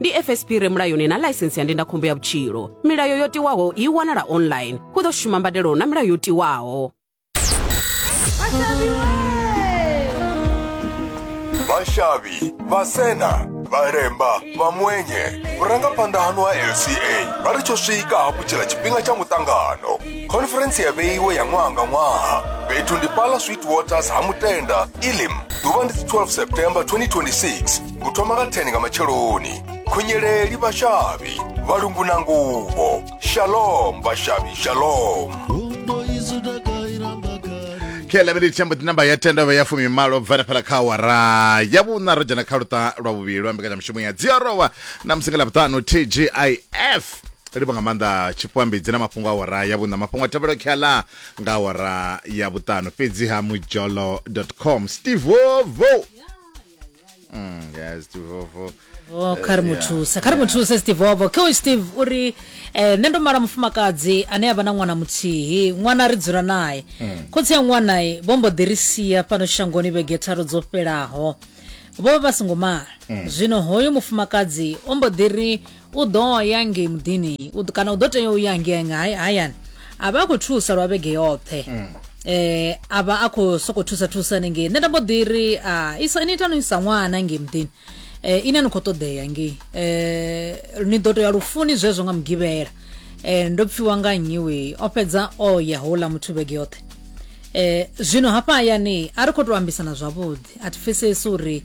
ndi fsp re mulayoni na ḽaisensi ya ndindakhombo ya vhutshilo milayo yo tiwaho i wanala online hu ḓo shuma mbadelo na milayo yo tiwaho vashavi vasena valemba vamwenye vhurangaphanḓa hanu ha lca vha ri tsho swika hafhu tshila tshifhinga tsha muṱangano khonferentsi ya vheiwe ya ṅwaha nga ṅwaha fhethu ndi pala sweet waters ha mutenda ilim ḓuvha ndi 12 september 2026 u thoma nga 10 nga matsheloni khunyeleli vhashavhi vhalungu na nguvho shalom vhashavhi shalom khe lavhele tshambo ti namba ya tenda vha ya fumi malo bvana fhala kha awara ya vhuṋa ro dzhena kha luṱa lwa vhuvhili lwa mbekanyamushumo ya dziarowa na musi nga ḽavhuṱanu tgif livho nga maanḓa tshipwambidzi na mafhungo a awara ya vhuṋa mafhungo a tevhelo khala nga awara ya vhuṱanu fhedzi ha mujolo com steve vovo Mm, yes tivovo Oh, kha ri mu thuse kha ri mu thuse steve wovho khe uyu steve u ri eh, nṋe ndo mala mufumakadzi ane a vha na ṅwana muthihi ṅwana ri dzula naye khotsi ya ṅwanayi vho mbo ḓi ri sia fhano shangoni vhege tharu dzo fhelaho vho vha vha songo mala zwino hoyo mufumakadzi o mbo ḓi ri u ḓo ya ngei muḓini kana u ḓo tea u ya ngei hayani a vha a khou thusa lwa vhege yoṱhe mm. eh a vha a khou sokou thusa thusa nengei nṋe nda mbo ḓi ri a isa ni ita no isa ṅwana ngei muḓini eh ine ni khou ṱoḓea ngei eh ni ḓo tea lufuni zwezwo nga mugivhela eh ndo pfiwa nga nnyi we o fhedza o ya houḽa muthu vhege yoṱhe eh zwino hafha hayani a ri khou tou ambisana zwavhuḓi a thi pfesesi uri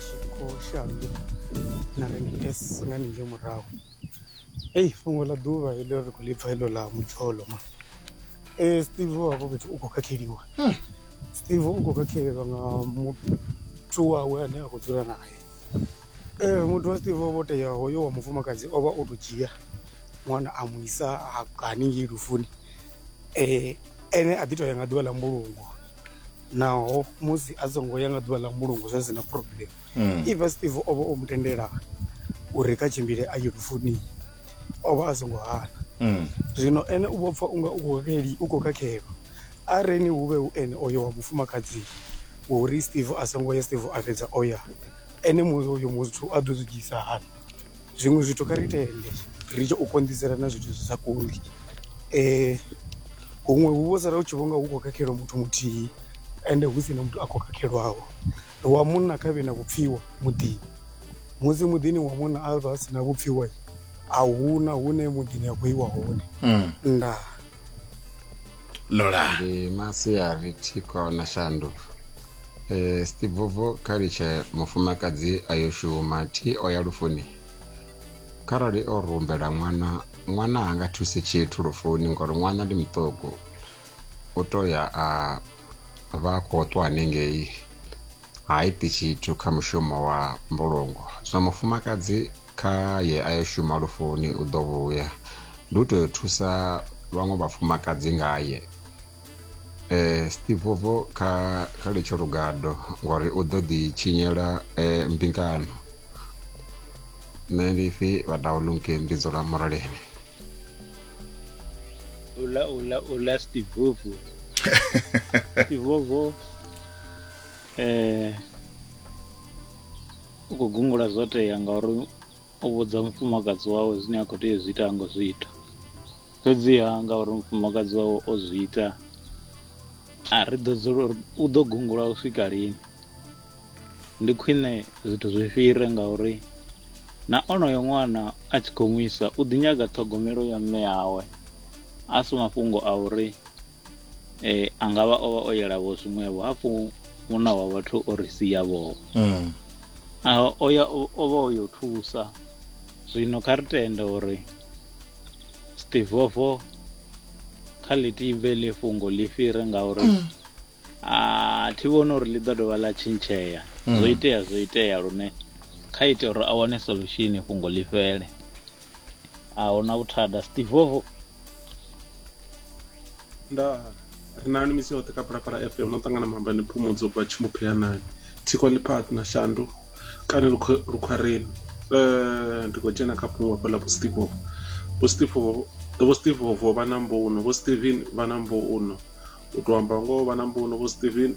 tshikho shandu na rents nga ninge murahu eyi fhungo ḽa ḓuvha heḽo ri khou ḽipfa heḽo ḽa mudzholo ma e eh, steve wavho fhethu u khou khakheliwa hmm. steve u khou khakheliwa nga muthu wawe ane a khou dzula naye e eh, muthu wa steve wavho tea hoyo wa mufumakadzi o vha o tou dzhia ṅwana a mu isa haningei lufuni um ene a ḓi tou ya nga ḓuvha ḽa mbulungo naho musi a songo ya nga ḓuvha ḽa mbulungo zwa sina problem mm. even steve o vha o mu tendela uri kha tshimbile a ye lufuni o vha a songo hana mm. zwino ene u vho pfa unga u khou vheli u khou khakhelwa a reni hu vhe hu ene oyo wa mufumakadzi uri steve a songo ya steve a fhedza o ya ene musi uyo muthu a ḓo zwi dzhisa hani zwiṅwe zwithu kha ri tende ri tshi u konḓisela na zwithu zwi sa kondi um huṅwe hu vho sala u tshi vhonga hu khou khakhelwa muthu muthihi ende hu si na muthu a khou khakhelwaho wa munna kha vhe na vhupfhiwa muḓini musi muḓini wa munna a vha a si na vhupfhiwa a huna hune muḓini a khou iwa hone mm. ndaa lola ndi masiari thiko na shandu e, stivovo kha litshe mufumakadzi a yo shuma thi o ya lufuni kharali o rumbela ṅwana ṅwana ha nga thusi tshithu lufuni ngori ṅwana ndi muṱuku u to ya a vha a khou ṱwa hanengei ha iti tshithu kha mushumo wa mbulungo zwino mufumakadzi Kha ye a yo shuma lufuni u ḓo vhuya. Ndi u tou yo thusa vhaṅwe vhafumakadzi ngaye. E, Stivovo kha, kha litsho lugado ngori u ḓo ḓi tshinyela e, mbingano. Nṋe ndi pfi vhadaulunke ndi dzula muraleni. Ula ula ula Stivovo. Stivovo eh U khou gungula zwo tea ngauri o vhudza mufumakadzi wawe zwine a khou tea u zwi ita ngo zwi ita fhedziha ngauri mufumakadzi wawe o zwi ita a ri ḓo dzula uri u ḓo gungula u swika lini ndi khwine zwithu zwi fhire ngauri na onoyo ṅwana a tshi khou nwisa u ḓi nyaga ṱhogomelo ya mme awe a si mafhungo a uri eh, a nga vha o vha o yelavho zwiṅwevho hafhu munna wa vhathu o ri siyavho mm. o ya o vha o yo thusa zwino kha ri tende uri stivofo kha ḽi tivhe ḽi fhungo ḽi fhire ngauri mm. a thi vhoni uri ḽi ḓo dovha ḽa tshintshea mm. zwo itea zwo itea lune kha ite uri a wane solution fhungo ḽi fhele a hu na vhuthada stivovo nda ri nani misi yoṱhe kha phalaphala fm no ṱangana mambani phumudzo bva tshimuphiyanani thikwa ḽiphathi na shandu kana lukhwareni um eh, ndi khou dzhena kha fhungo hafhaḽa vho stivovo vho stivovo vho stivovo vha na mbuno vho steven vha na mbuno u tou amba ngoho vha na mbuno vho steven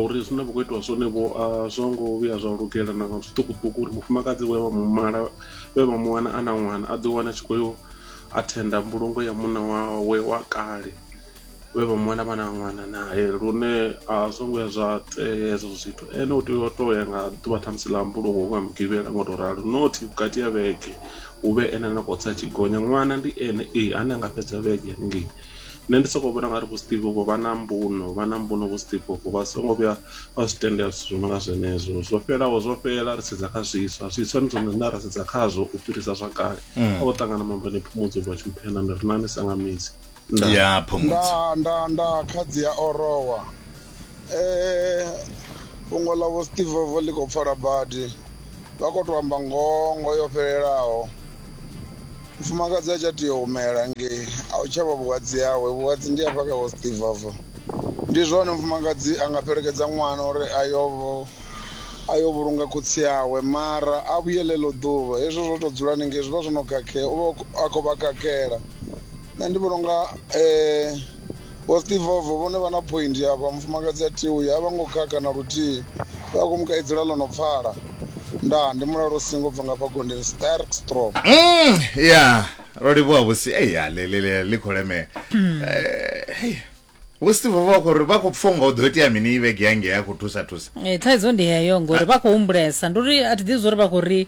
uri zwine vha khou itiwa zwone vho a zwo ngo vhuya zwa lugela na nga zwiṱukuṱuku uri mufumakadzi we vha mumala we vha mu wana a na ṅwana a ḓi wana tshi khou yo athenda mbulungo ya munna wawe wa kale vhe vha mu wana vha na ṅwana nae lune a zwo ngo ya zwa tea hezwo zwithu ene u tea u to ya nga ḓuvha ṱhamusi ḽa mbulungo nga mugivhela ngo to ralo not vhukati ya vhege hu vhe ene na khou tsa tshi gonya ṅwana ndi ene ee ane a nga fhedza vhege haningei Nṋe ndi soko vhona ngari vho Steve vho vha na mbuno vha na mbuno vho Steve vho vha songo vhuya vha zwi tendela zwithu zwi no nga zwenezwo zwo fhelaho zwo fhela ri sedza kha zwiswa zwiswa ndi zwone zwine ra sedza khazwo u fhirisa zwa kale a vho ṱangana mambo ni phumudzo vha tshumphena ndi ri nani sanga midzi ya phumudzo nda nda nda khadzi ya orowa fhungo ḽa vho steve vovo ḽi khou pfala badi vha khou tou amba ngongo yo fhelelaho mufumakadzi a tsha tea u humela ngei a u tshavha vhuhadzi yawe vhuhadzi ndi afha kha vho steve vovo ndi zwone mufumakadzi a nga fhelekedza ṅwana uri a yo a yo vhulunga khotsi yawe mara a vhuye ḽeḽo ḓuvha hezwi zwo tou dzula ningei zwi vha zwo no khakhea u vha a khou vha khakhela nṋe ndi vhona unga . Vho Stivovo vhone vha na phointhi afha, mufumakadzi a thi uya a vha ngo khakha na luthihi, vha khou mu kaidzela ḽo no pfala. Ndaa, ndi mulalo u singo bva nga hafha gondeni. Sterk Stroom. Umm, ya, ro livhuwa vhusi, ei ya ḽi, ḽi, ḽi, ḽi khou lemela. Eh, hei. Vho Stivovo vha khou ri vha khou pfa unga hu ḓo itea mini i vhege ya ngei a khou thusa thusa. Ee, thaidzo ndi heyo ngori vha khou humbulesa. Ndi uri a thi ḓivhi zwa uri vha khou ri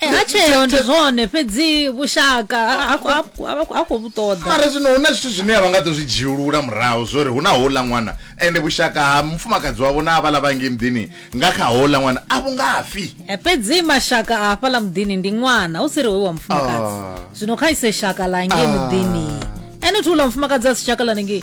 Eh, ha tsheo ndi zwone fhedzi vhushaka ha khou- ha khou- ha khou- ha khou vhu ṱoḓa mara zwino hu na zwithu zwine a vha nga ḓo zwi dzhiulula murahu zwori hu na houḽa ṅwana ende vhushaka ha mufumakadzi wavho na avhala vhangi muḓini nga kha houḽa ṅwana a vhu ngafhi Eh, fhedzi mashaka a hafhaḽa muḓini ndi ṅwana hu si ri hoyu wa mufumakadzi Ah. zwino kha ise shaka la ngei muḓini ene thi uḽa mufumakadzi a si shaka ḽa nengei